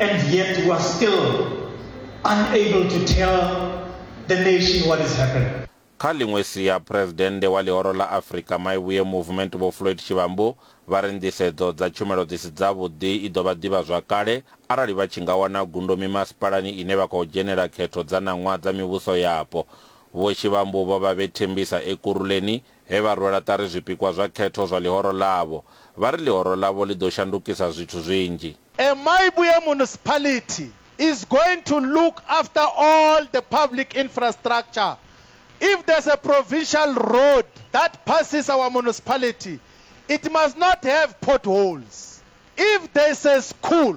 And yet we are still unable to tell the nation what has happened. Kha ḽiṅwe sia, Phresidennde wa Ḽihoro ḽa Afrika Maibuye Movement Vho Floyd Shivambu vha ri nḓisedzo dza tshumelo dzi si dzavhuḓi i ḓo vha ḓivhazwakale arali vha tshi nga wana gundo mimasipalani ine vha khou dzhenela khetho dza ṋaṅwaha dza mivhuso yapo. Vho Shivambu vho vha vhe Tembisa Ekurhuleni, he vha rwela ṱari zwipikwa zwa khetho zwa ḽihoro ḽavho, vha ri ḽihoro ḽavho ḽi ḓo shandukisa zwithu zwinzhi. Emaibuye Municipality is going to look after all the public infrastructure. If there's a provincial road that passes our municipality, it must not have potholes. If there's a school,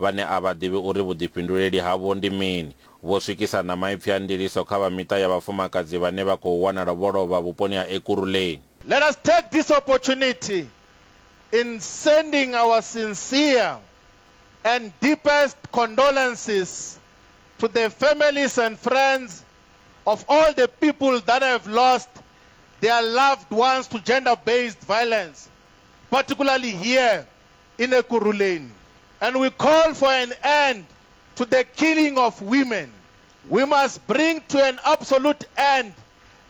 vhane a vha ḓivhi uri vhuḓifhinduleli havho ndi mini, vho swikisa na maipfi a ndiliso kha vha miṱa ya vhafumakadzi vhane vha khou wanala vho lovha vhuponi ha Ekurhuleni. Let us take this opportunity in sending our sincere and deepest condolences to the families and friends of all the people that have lost their loved ones to gender-based violence, particularly here in Ekurhuleni and we call for an end to the killing of women, we must bring to an absolute end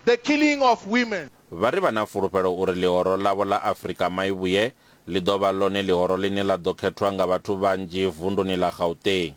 the killing of women. Vha ri vha na fulufhelo uri ḽihoro ḽavho ḽa Afrika Maivhuye ḽi ḓo vha ḽone ḽihoro ḽine ḽa ḓo khethwa nga vhathu vhanzhi vunduni ḽa Gauteng.